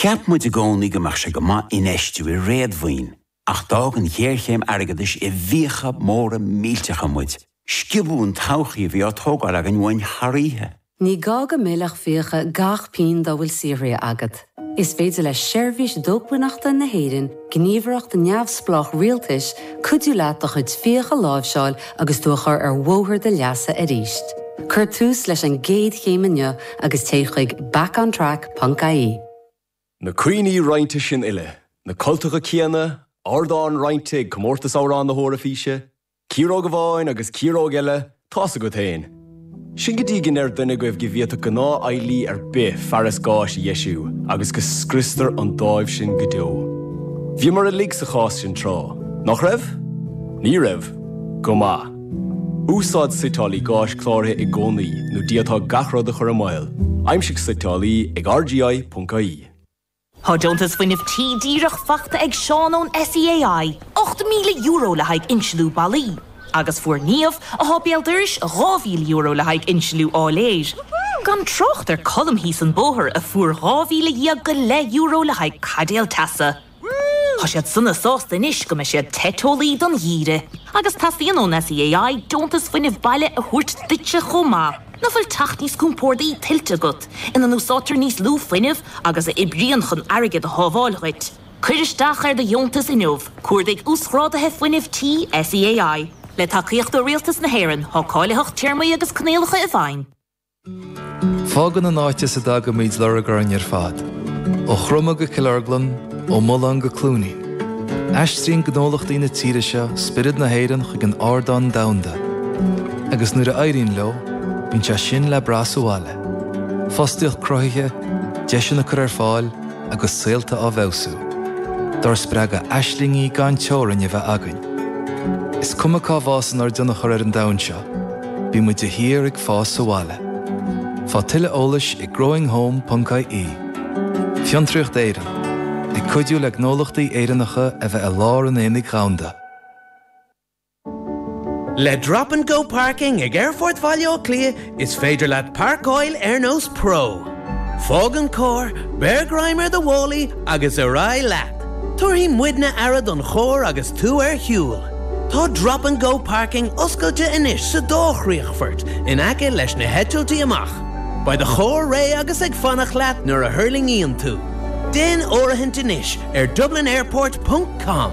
Cheap muid i gcónaí go mbeadh sé go maith infheistiú i réadmhaoin, ach d'fhág an ghéarchéim airgeadais i bhfiacha móra millteacha muid, sciobadh an todhchaí a bhí á tógáil againn uainn thar oíche. Ní gá go millfeadh fiacha gach pingin dá bhfuil saothraithe agat. Is féidir le Seirbhís Dócmhainneachta na hÉireann gníomhaireacht neamhspleách rialtais, cuidiú leat do chuid fiacha a láimhseáil agus tú a chur ar bhóthar do leasa arís. Cuir tús leis an gcéad chéim inniu agus téigh chuig backontrack.ie. Na cuimhní roinnte sin uile, na cultacha céanna, ardán roinnte ag Comórtas Amhrán na hEoraifíse, Ciaróg amháin agus ciaróg eile, tá's agat fhéin. Sin go dtí go ndeir duine agaibh go bhféadfadh gnáth-fheighlí ar bith fearas gáis a dheisiú agus go scriostar an dáimh sin go deo. Bhíomar uilig sa chás sin tráth, nach raibh? Ní raibh? Go maith. Úsáid suiteálaí gáis cláraithe i gcónaí nó d'fhéadfá gach rud a chur i mbaol, aimsigh suiteálaí ag rgi.ie. Tá deontas Fuinnimh Tí díreach faighte ag Seán ón SEAI, €8,000 le haghaidh insliú ballaí, agus fuair Niamh, atá béal dorais, €2,000 le haghaidh insliú áiléir, gan trácht ar Colm thíos an bóthar a fuair dhá mhíle dhéag go leith euro le haghaidh caidéal teasa. Tá siad sona sásta anois go mbeidh siad te teolaí don gheimhreadh. Agus teastaíonn ón SEAI deontas Fuinnimh Baile a thabhairt duitse chomh maith. Nach bhfuil teach níos compórdaí tuillte agat, ina n-úsáidtear níos lú fuinnimh agus a oibríonn chun airgead a shábháil dhuit? Cuir isteach ar do dheontas inniu, cuardaigh Uasghráduithe Fuinnimh Tí SEAI. Le tacaíocht ó Rialtas na hÉireann, tá cáilitheacht téarmaí agus coinníollacha i bhfeidhm. Fágann an áit as a dtagaimid lorg orainn ar fad, ó Chromadh go Cill Orglan, ó Mhaoláin go Cluainí. Aistríonn gnólachtaí na tíre seo spiorad na hÉireann chuig an ardán domhanda agus nuair a éiríonn leo, bíonn sé sin le brath sa bhaile, fostaíocht cruthaithe, deiseanna á gcur ar fáil agus saolta á bhfeabhsú. Dár spreagadh aislingí gan teorainn a bheith againn. Is cuma cá bhfásann ár dtionchar ar an domhan seo, bíonn muid de shíor ag fás sa bhaile. Faigh tuilleadh eolais ag growinghome.ie. Fiontraíocht Éireann, ag cuidiú le gnólachtaí Éireannacha a bheith i lár an aonaigh dhomhanda. Le Drop and Go Parking ag Aerfort Bhaile Átha Cliath, is féidir leat páirceáil ar nós pro. Fág an carr, beir greim ar do mhálaí agus ar aghaidh leat! Tabharfaidh muidne aire don charr agus tú ar shiúl. Tá Drop and Go Parking oscailte anois sa dá chríochfort in aice leis na heitiltí amach. Beidh do charr réidh agus ag fanacht leat nuair a thuirlingíonn tú. Déan áirithint anois ar dublinairport ponc com.